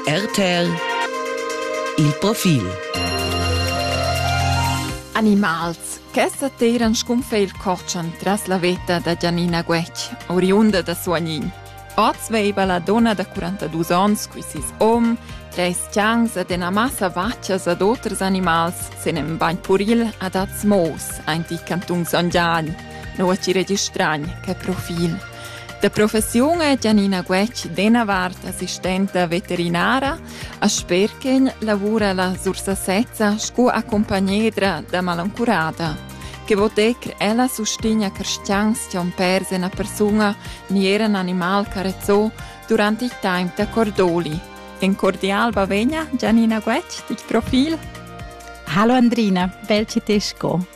RTL Il profil Animals che s'attiran scunfe il cortschan tras la veta da Gianina Guetg, oriunda da Suagnin. Oz veiva la donna da 42 ons qui sis om, treis chans ed ena massa vaccias ad oters animals sen en bagn puril ad az mous, ainti cantung Son Gian, noa ci registragn, che profil. Da professiun è Gianina Guetg d'ena vart assistenta veterinara, a Sperchen lavura la Sursasezza sco accompagnedra da malancurada. Che votec ella sustigna cristians che on pers una persona ni era un animal carezzò durante il tempo da Cordoli. En cordial bavegna Gianina Guetg, dich Profil. Hallo Andrina, bel ci te sco.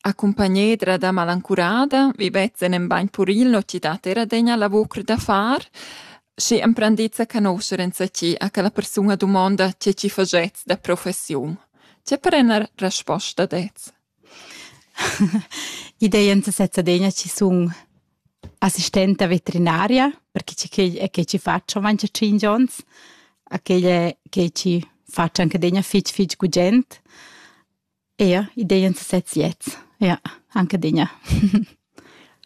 Accumpagnedra da malancurada vivetta en in bagn puril no chi dat eir adegna lavur da far. Schi emprendizza canoscher enzatgi a quella persuna dumonda che chi fagets da professiun. Tge per ena resposta dets? I dei enzatg'la adegna chi sun assistenta veterinaria, perche che quegl è che chi faccio avancha tschinch ons, a quegl è che chi faccio anche adegna fich fich gugent. Eir idea in sesez jet. Ja, anche digna.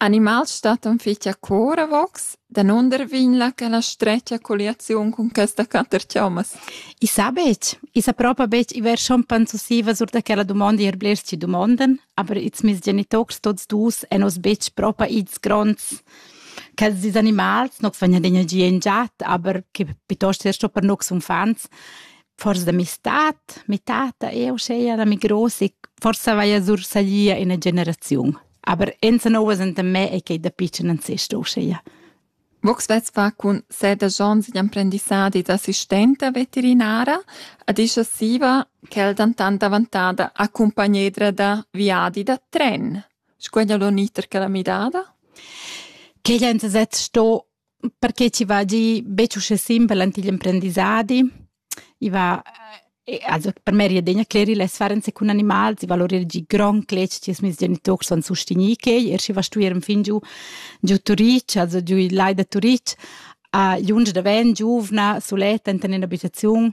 Animals stattan fitcha coravox, danunder vegna quella stretga colliaziun cun questa caterchaumas? I sa betg. I sa propa betg i ver schon panzusiva sur da quella dumonda ir blers ci dumondan, aber ils mis genitocs tots dus èn oz betg propa ils gronds quels dis animals, nox vegnan d'energia in giat, aber che piuttosto er sto per nox uffants. forsa da mi stat, mi tata, eu seia da mi gross e forsa vaia sursalia ina generaziun. Aber enza novas enta me è che da piccen an sest uscheia. Vox vets fa cun sede jons in emprendissadi d'assistenta veterinara, ad isha siva quel dantan davantada accompagnedra da viadi da tren. Squeglia l'oniter che la midada? Che enza sez sto perché chi va gi betg uschè simpel ant igl emprendissadi. I va also per me riedegna clerir lez farense cun animals, i valorir gi grond cletg che mes genitors son sustegni quei, er schi va stuer fin giu giu Turitg, also giu il lai da Turitg, a lunsch da ven giuvna, suletta enten in abitaziun,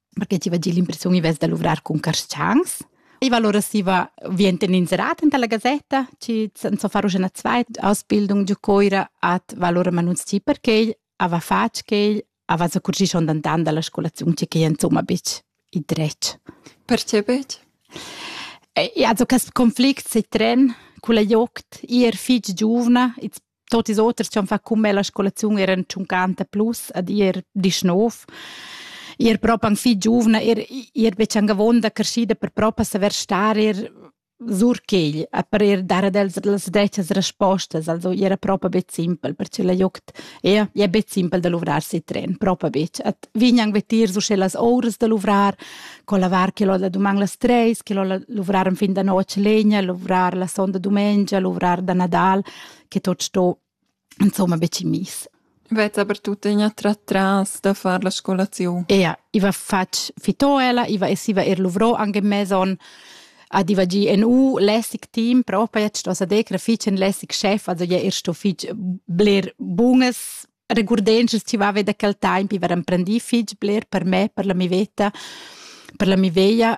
perché ti va dir l'impressiun i vess da luvrar cun carstgangs. I va allora si va vien inserat enta la gazetta, ci so far una zweit Ausbildung giu Coira at va allora manunz ti perché ava fatg che ava sa curci schon dan dan dalla scolazione che che insomma bitch i dretg. Perché bitch? E also quest conflict se tren con la joct ir fich giovna, it's Tot ils oters chi han fat cun me la scolaziun eran tschuncanta plus ad ir disch nov. Ir propi anc fich giuvna, ir, ir be tschang avonda creschida per propi saver star ir sur quegl a per ir dar ad els las drettas respostas. Also i era propi be simpel, perche la jogt ja, ja be simpel da luvrar si tren, propi betg. Et vignan vetir su sche las ouras da luvrar, co lavar che l'ho da duman las treis, che l'ho luvrar en fin da notg legna, luvrar la sonda dumengia, luvrar da Nadal. che tot sto insomma be miss. Vet aber tuttegna tra tras da far la scolazione. Ja, iva fatg fitoela, iva e siva er luvrò anche meson ad iva gi en u lässig team, propa jetzt was a decra fitg en lässig chef, also ja er sto fitg bler bunges regurdences ti va da quel temp, iva emprendi fitg bler per me, per la mi veta, per la mi veia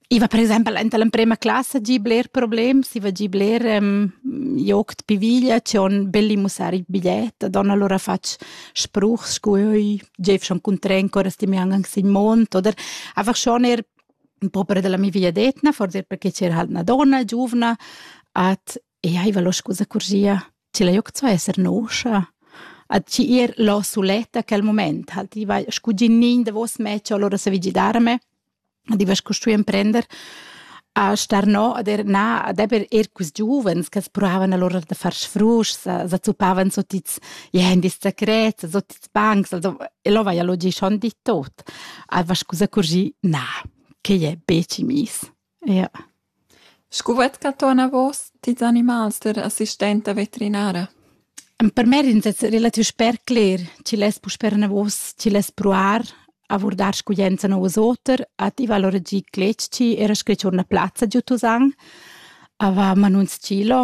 I va per exempel enta l'emprema classa gi bler problems, i va gi bler um, joc pi viglia, c'è on belli mussar il bigliet, don allora fatg spruch, scu oi, gev schon cun tren, cora sti mi angan sin mont, oder einfach schon er un po' per della mia vigliadetna, forse perché c'era halt una donna giuvna, at e aiva lo scusa curgia. chi l'ha gnüt co esser noscha. A chi ir l'ho suletta quel mumaint, ha'l diva scu gignin davos me ch'ho lura savì gidarme, a diva scu stui imprender a star no ad er na ad eber eir quist giuvens ch'as pruavan alura da far sfruschs, sa zuppavan sot its jendis secrets, sot its bancs, also e lo vaja lo gischond dit tot. A va scu s'accurgì, na, quai è be chi miss. Ja. Scu vet ca tuorna vos tils animals der assistenta veterinara? Per me ris es relativ sper cler chi less puspè anavos chi less pruar a vurdar scuglienza nou as oter, a tivar lur agì cletg-chi, eir schi tuorna plazza giü Tusan, a va a manun s-chilo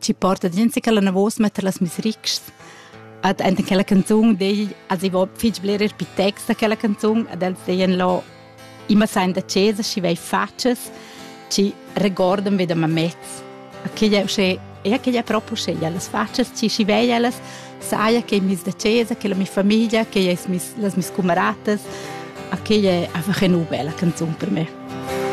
ci porta gente che la navos mette las misrics ad enten quella canzone degli also ich war viel bler per text quella canzone ad els deien lo immer sein da cesa ci vai faces ci recordam wieder ma mezz aquella che e che proprio scegliere le facce ci ci veia saia che mis da cesa che la mia famiglia che es mis las mis camaradas aquella è einfach eine bella canzone per me